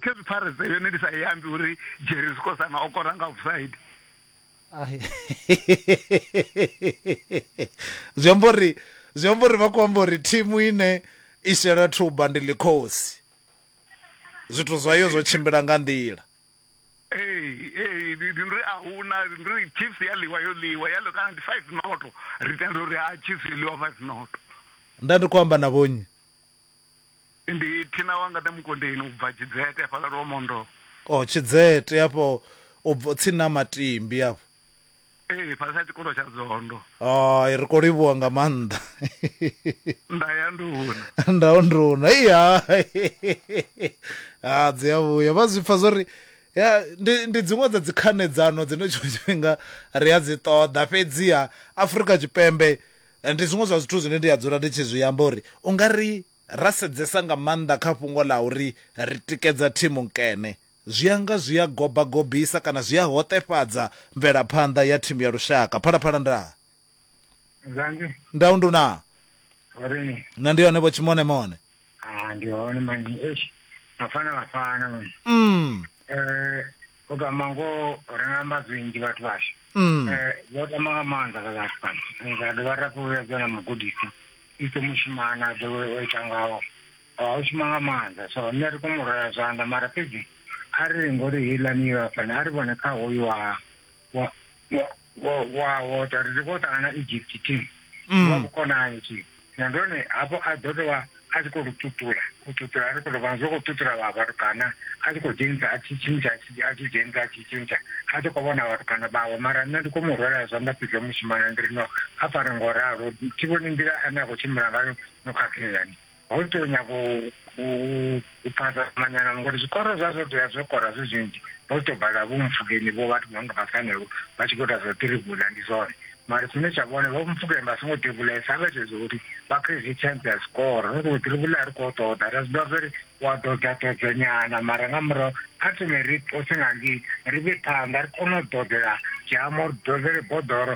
Cape Pirates yone ndi sa i ambi uri Jerry Zikosana o kora nga offside. Ai. zwi amba uri zwi amba uri vha khou amba uri thimu ine i shela thuba ndi ḽikhosi zwithu zwayo zwo tshimbila nga nḓila Ee, ee, ndi ndi ri a huna ndi ri Chiefs ya ḽiwa yo ḽiwa ya ḽiwa kana ndi 5 noto ri tenda uri ha Chiefs yo ḽiwa 5 noto. nda ndi khou amba na vhonnyi Ndi Thina wa Ngade Mukondeni u bva Tshidzete hafhaḽa Lwomondou. Oh Tshidzete hafho u bva tsini na Matimbi hafho. Ee fhasi ha tshikolo tsha Dzondo. Hai ri kho livhuwa nga maanḓa. Nda ya nduna. Nda ya nduna i ha ha dzi a vhuya vha zwi pfa zwori ya ndi ndi dziṅwe dza dzi khanedzano dzine tshiṅwe tshifhinga ri a dzi ṱoḓa fhedziha Afrika Tshipembe Ndi zwiṅwe zwa zwithu zwine ndi a dzula ndi tshi zwi amba uri u nga ri ra sedzesa nga maanḓa kha fhungo ḽa uri ri tikedza thimu nkene, zwi a nga zwi a goba-gobisa kana zwi a hoṱefhadza mvelaphanḓa ya thimu ya lushaka. Phalaphala nda. Nzangi. Ndau ndu na. Vharini. Na ndi hone vho Tshimonemone. Ah, ndi hone manje eish mafana vafana manje mm eh kodwa mango renga mazwinji vhathu vashu mm eh vho tama nga maanḓa vha vhathu fhano Eh, ra dovha ra fhuvhedza na mugudisi ite mushumana a dovhe o ita ngawo Ah, o shuma nga maanḓa so nṋe ri kone u rwela zwanḓa mara fhedzi a ri ngori heiḽani yo fhana a ri vhone kha hoyu wa wa wa- Wo wa wo ta ri ndi khou ṱangana na Egypt team. Mm. Wa vhukonani team. Na ndone hafho a ḓo tovha a tshi khou ri tutula, u tutula a ri khou tovha zwo khou tutula vha vhatukana a tshi khou dzhenisa a tshi tshintsha a tshi a tshi dzhenisa a tshi tshintsha a tshi khou vhona vhatukana vhawe mara nṋe ndi khou mu rwela zwanḓa pidzo mushimana ndi ri no a fare ngo ralo thi vhoni nḓila ane a khou tshimbila ngayo no khakheani. Ho tou nyago u phasa manyanano ngori zwikoro zwa zwo tea zwo kora zwi zwinzhi vho tou bala vho mupfukeni vho vhathu vhanga vha sanelwo vha tshi khou ita zwa tirivula ndi zwone mara tshine tsha vhone vho mupfukeni vha songo tirivulesa vha tshedza uri vha pfhe zwi chance ya zwikoro ri khou tirivula a ri khou ṱoḓa ra zwi ḓivha zwa uri wa ḓodza ḓodza nyana mara nga murahu kha thome ri ṱose nga ngei ri vhe phanḓa ri kone u ḓodzela dzhamo ri ḓodzele boḓoro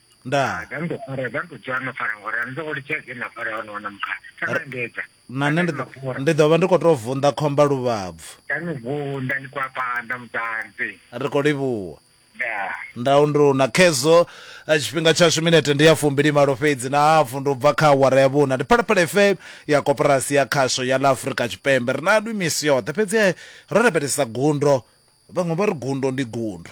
ndaa zwa ndo fara zwa ndo dzwa no fara ngori ani soko litsha zwi na fara hone hone mukha tsana ndedza na nṋe ndi ḓo ndi ḓo vha ndi khou tou vunḓa khomba luvhabvu tsani vunḓa ni kwa panda mudzanzi ri khou livhuwa ndaa ndau ndi una khezwo eh, tshifhinga tshashu minete ndi ya fumbili malo fhedzi na hafu ndi u bva kha awara ya vhuna ndi phalaphala fm ya koporasi ya khasho ya ḽa afurika tshipembe ri na lwi misi yoṱhe fhedzi eh, ro lavhelesa gundo vhaṅwe vha ri gundo ndi gundo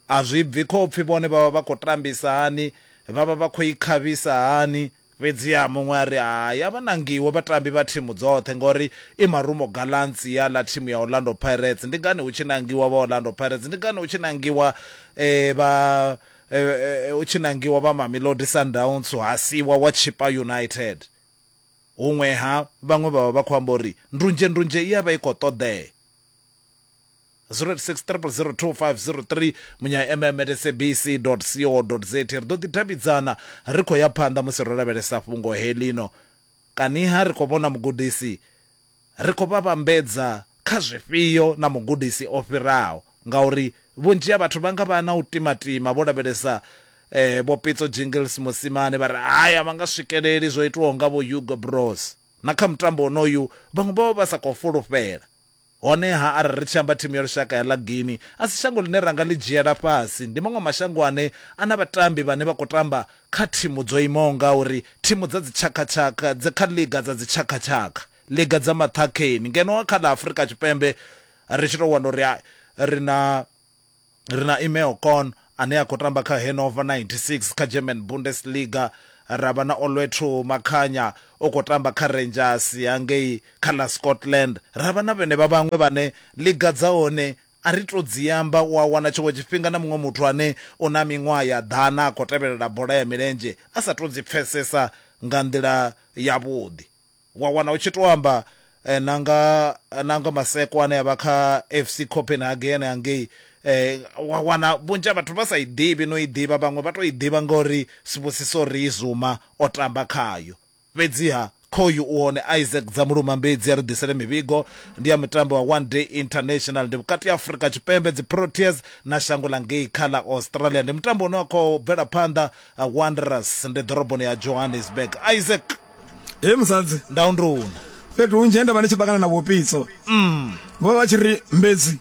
A zwi bvi khopfi vhone vha vha vha khou tambisa hani, vha vha vha khou i khavhisa hani. Fhedziha muṅwe a ri, Hai, a vha nangiwe vhatambi vha thimu dzoṱhe ngauri i Marumo Gallants i a ḽa thimu ya Orlando Pirates. Ndi ngani hu tshi nangiwa vha Orlando Pirates? Ndi ngani hu tshi nangiwa vha hu tshi nangiwa vha Mamelodi Sundowns ha siiwa wa Chippa United? Huṅwe-ha, vhaṅwe vha vha vha khou amba uri ndunzhendunzhe i a vha i khou ṱoḓea. 0863002503 munya mm at sabc co za ri ḓo ḓi davhidzana ri khou ya phanḓa musi ro lavhelesa fhungo helino kaniha ri khou vhona mugudisi ri khou vha vhambedza kha zwifhio na mugudisi o fhiraho ngauri vhunzhi ha vhathu vha nga vha na u timatima vho lavhelesa eh, vho pitso jingles musimane vha ri hayi a vha nga swikeleli zwo itiwaho nga vho hugo bros na kha mutambo onoyu vhaṅwe vha vha vha sa khou fulufhela Honeha, arali ri tshi amba thimu ya lushaka ya ḽa Guinea, a si shango ḽine ra nga ḽi dzhiela fhasi. Ndi maṅwe mashango ane a na vhatambi vhane vha khou tamba kha thimu dzo imaho ngauri, thimu dza dzitshakhatshakha, dzi kha ḽiga dza dzitshakhatshakha, ḽiga dza maṱhakheni, ngeno kha ḽa Afrika Tshipembe ri tshi tou wana uri ri na. Ri na Imeo Korn ane a khou tamba kha Hannover 96 kha German Bundesliga, ra vha na Olwethu Makhanya o khou tamba kha Rangers ya ngei kha ḽa Scotland, ra vha na vhenevha vhaṅwe vhane ḽiga dza hone a ri tou dzi amba. U a wana tshiṅwe tshifhinga na muṅwe muthu ane u na miṅwaha ya ḓana a khou tevhelela bola ya milenzhe a sa tou dzi pfesesa nga nḓila yavhuḓi. Wa wana hu tshi tou amba na nga, na nga masekwa ane a vha kha FC Copenhagen hangei, wa wana vhunzhi ha vhathu vha sa i ḓivhi na u i ḓivha, vhaṅwe vha tou i ḓivha ngauri Sibusiso Riizuma o tamba khayo. Fhedziha khoyu u hone, Isaac Dzamuluma Mbidzi a ri ḓisele mivhigo, ndi ya mutambo wa One Day International, ndi vhukati ha Afrika Tshipembe, dziProteas, na shango ḽa ngei kha ḽa Australia. Ndi mutambo une wa khou bvela phanḓa, Wanderers ndi ḓoroboni ya Johannesburg. Isaac. he musadzi ndau ndi una fhethu hunzhi he nda vha ndi tshi ṱangana na vhupitso mm. vho vha tshi ri mbedzi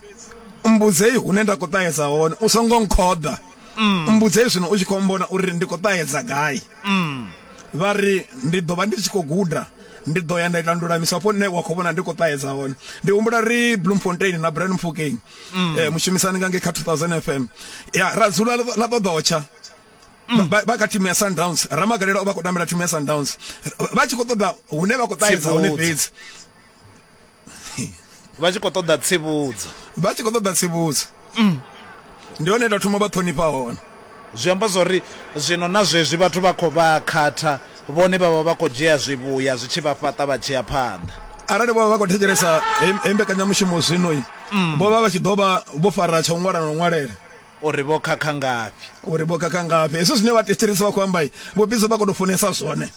mbudzei hune nda khou ṱahedza hone u songo nkhoḓa mm. mbudzei zwino u tshi khou mbona uri ndi khou ṱahedza gai mm. vha ri ndi ḓo vha ndi tshi khou guda ndi ḓo ya nda ita ndulamiso hafho nṋe wa khou vhona ndi khou ṱahedza hone ndi humbula ri bloemfontein na brand mfukeng um mushumisani nga nge kha 2000 fm ya ra dzula ḽa ṱoḓotsha mm. vha vha kha thimu ya Sundowns Ramagalela o vha khou tambela thimu ya Sundowns vha tshi khou ṱoḓa hune vha khou ṱahedza hone fhedzi vha tshi khou ṱoḓa tsivhudzo vha tshi khou ṱoḓa tsivhudzo mm. ndi hone nda thoma vha ṱhonifha hone zwi amba zwori zwino na zwezwi vhathu vha khou vha khatha vhone vha vha vha khou dzhia zwivhuya zwi tshi vha fhaṱa vha tshi ya phanḓa arali vho vha vha khou thetshelesa he mbekanyamushumo zwino mm. vho vha vha tshi ḓo vha vho fara tsha u ṅwala na u ṅwalela O ri vho khakha ngafhi? O ri vho khakha ngafhi? Hezwi zwine vhathetshelesi vha khou amba, Vho Bizo vha khou tou funesa zwone.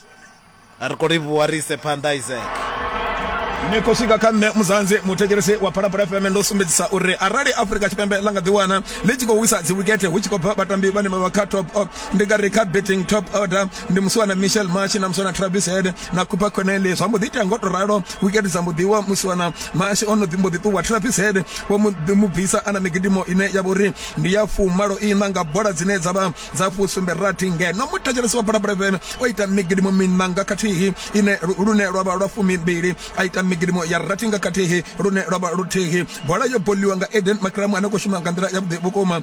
Ri khou livhuwa ri ise phanḓa, Isaac. Ni khou swika kha nṋe Muzanzi, muthetshelesi wa Phalaphala FM, ndo sumbedzisa uri arali Afrika Tshipembe ḽa nga ḓiwana ḽi tshi khou wisa dziwikethe hu tshi khou bva vhatambi vhane vha vha kha top, ndi nga ri kha batting top order, ndi musi wana michel machi na musi wana travis head na cooper conelli zwa mbo ḓi itea ngo to ralo wikete dza mbo ḓiwa musi wana mashi o no ḓi mbo ḓi ṱuwa travis head vho mu ḓi mu bvisa a na migidimo ine ya vha uri ndi ya fumalo ina nga bola dzine dza vha dza fusumbe rathi ngeno muthetshelesi wa bola breven o ita migidimo minanga khathihi ine lune lwa vha lwa fumi mbili a ita migidimo ya rathi nga khathihi lune lwa vha luthihi bola yo boliwa nga eden makramu ane khou shuma nga nḓila ya vhuḓi vhukuma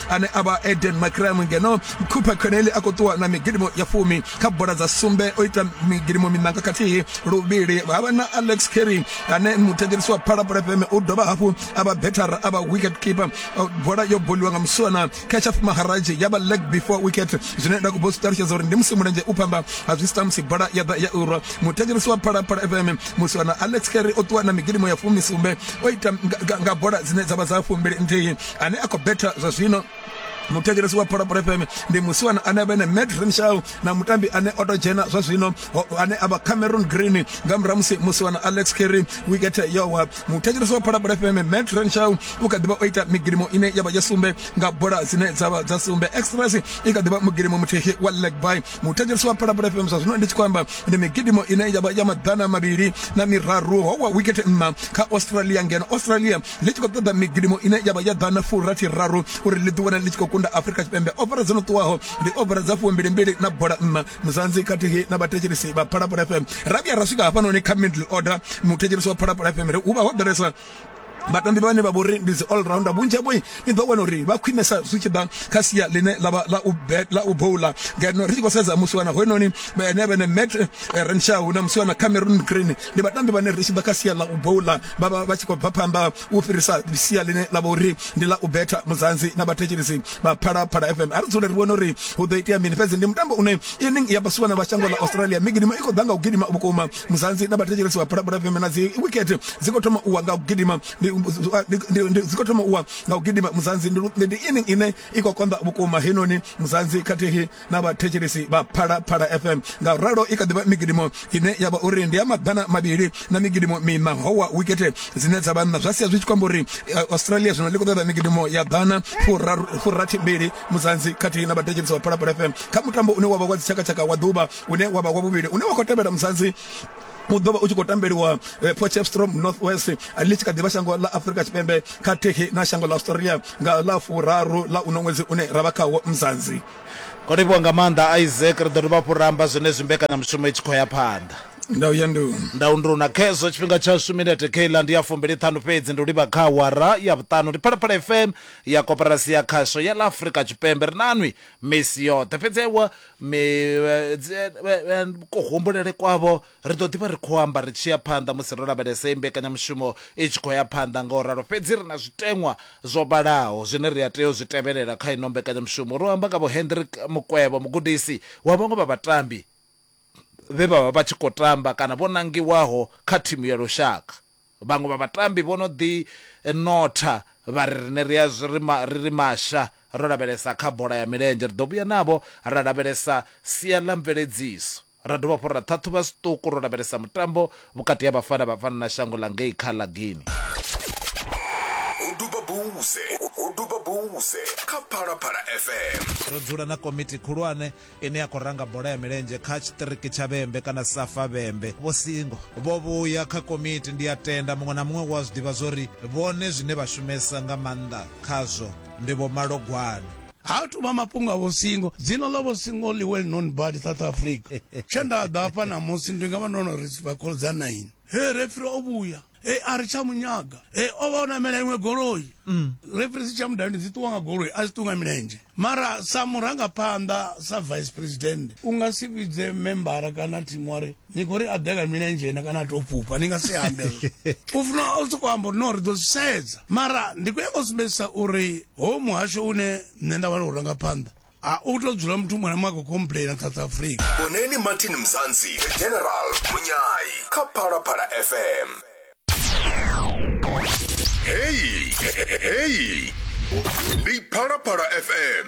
ane a vha eden macram ngeno cooper coneli a khou ṱuwa na migidimo ya fumi kha bola dza sumbe o ita migidimo minanga khathihi luvhili ha vha na alex carry ane muthetshelisi wa phalaphala fm u dovha hafhu a vha better a vha wicket keeper bola yo boliwa nga muswana kashaf maharaji ya vha leg before wicket zwine nda khou ṱalutshedza uri ndi musi mulenzhe u pamba ha zwi sita musi bola ya ḓa ya urwa muthetshelisi wa phalaphala fm muswana alex carry o ṱuwa na migidimo ya fumi sumbe o ita nga bola dzine dza vha dza fumbili nthihi ane a khou betha zwa zwino muthetshelesi wa pholopolo fm ndi musiwana ane avha ene mad renshaw na mutambi ane o to dzhena zwa zwino ane avha cameron green nga murahu musi musiwana alex kerry wicket yowa muthetshelesi wa pholopolo fm mad renshaw u kha ḓivha o ita migidimo ine yavha ya sumbe nga bola dzine dzavha dza sumbe express i kha ḓivha mugidimo muthihi wa leg by muthetshelesi wa pholopolo fm zwa zwino ndi tshi khou amba ndi migidimo ine yavha ya maḓana mavhili na miraru howa wicket nṋa kha australia ngeno australia ḽi tshi khou ṱoḓa migidimo ine ya vha ya ḓana furathi raru uri ḽi ḓiwana ḽi tshi khou kunda afurika tshipembe ofara dzo no ṱuwaho ndi ofara dza fumbilimbili na bola nṋa muzanzi khathihi na vhathetshelesi vha phalaphala fm ra vhuya ra swika hafhanoni kha middle order muthetshelesi wa phalaphala fm ri hu vha ho ḓalesa vhatambi vhane vha vhori ndi dzi all rounder vhunzhi havho ni ḓo wana uri vha khwinesa zwi tshi ḓa kha sia ḽine ḽavha ḽa u bet ḽa u bowla ngeno ri tshi khou sedza musiwana hoyunoni ene vhene met eh, renshaw na musiwana cameron green ndi vhatambi vhane ri tshi ḓa kha sia ḽa u bowla vha vha vha tshi khou bva phanḓa u fhirisa sia ḽine ḽa vha uri ndi ḽa u betha muzanzi na vhathetshelesi vha phalaphala fm a ri dzule ri vhone uri hu ḓo itea mini fhedzi ndi mutambo une inning ya basuwana vha shango ḽa australia migidimo i khou ḓa nga u gidima vhukuma muzanzi na vhathetshelesi vha phalaphala fm na dzi wicket dzi khou thoma u wa nga u gidima dzi khou thoma u wa nga u gidima muzanzi ndi inning ine i khou konḓa vhukuma heinoni muzanzi khathihi na vhathetshelesi vha phalaphala fm nga ralo i kha ḓivha migidimo ine ya vha uri ndi ya maḓana mavhili na migidimo mina howa wikete dzine dza vha nna zwa sia zwi tshi kwamba uri eh, australia zwino ḽi khou ṱoḓa migidimo ya ḓana furathi mbili muzanzi khathihi na vhathetshelesi vha phalaphala fm kha mutambo une wa vha wa dzitshakatshaka wa ḓuvha une wa vha wa vhuvhili une wa khou tevhela muzanzi u ḓo vha u tshi khou tambeliwa eh, potchefstroom north west eh, ḽi tshi kha ḓivha shango ḽa afurika tshipembe khathihi na shango ḽa australia nga ḽa furaru ḽa uno ṅwedzi une ra vha khawo mzanzi o livhiwa nga maanḓa isaac ri ḓo dovha hafhu ramba zwenezwi mbekanyamushumo i tshi khou ya phanḓa ndau ya ndu ndau ndu na khezwo tshifhinga tshashu minete keiḽa ndi ya fumbili ṱhanu fhedzi ndi u livha kha awara ya vhuṱanu ndi phalaphala fm ya koporasi ya khasho ya ḽa afurika tshipembe ri nanwi misi yoṱhe fhedzi ewa kuhumbulele kwavho ri ḓo ḓivha ri khou amba ri tshi ya phanḓa musi ro lavhelesa iyi mbekanyamushumo i tshi khou ya phanḓa nga u ralo fhedzi ri na zwiteṅwa zwo vhalaho zwine ri a tea u zwi tevhelela kha ino mbekanyamushumo ro amba nga vho Hendrik Mukwevho mugudisi wa vhaṅwe vha vhatambi vhe vha vha vha tshi khou tamba kana vho nangiwaho kha thimu ya lushaka Vhaṅwe vha vhatambi vho no ḓi notha vha ri, Riṋe ri a zwi ri ri masha ro lavhelesa kha bola ya milenzhe, ri ḓo vhuya navho ra lavhelesa sia ḽa mveledziso, ra dovha hafhu ra ṱhaṱhuvha zwiṱuku ro lavhelesa mutambo vhukati ha Bafana Bafana na shango ḽa ngei kha ḽa Guinea. U duba buse, u duba buse kha Phalaphala FM. Ro dzula na komiti khulwane ine ya khou ranga bola ya milenzhe kha tshiṱiriki tsha vhembe kana safa vhembe vho singo vho vhuya kha komiti ndi a tenda muṅwe na muṅwe wa zwi ḓivha zwori vhone zwine vha shumesa nga maanḓa khazwo ndi vho malogwane ha tu vha mafhungo a vhosingo dzina ḽa vhosingo ḽi well known bad south africa tshe nda ḓa hafha namusi ndi nga vha ndo no ri vha khoḽo dza nine he refri o vhuya e a ri tsha munyaga e o vha o namela iṅwe goloi mm. referensi tsha mudani dzi ṱuwa nga goloi a dzi ṱuwa nga milenzhe mara sa murangaphanḓa sa vice president u nga si vhidze membara kana thimu wari ni khou ri a ḓe nga milenzhe na kana a tou fhufha ni nga si ambe u funa u sokou amba uri no ri ḓo zwi sedza mara ndi khou yanga u sumbedzisa uri ho muhasho une nṋe nda vha ri u rangaphanḓa a u to dzula muthu muṅwe na muṅwe a khou complaina south africa vhoneni martin mzansi the general munyayi kha phalaphala fm heyi heyi ndi phalaphala fm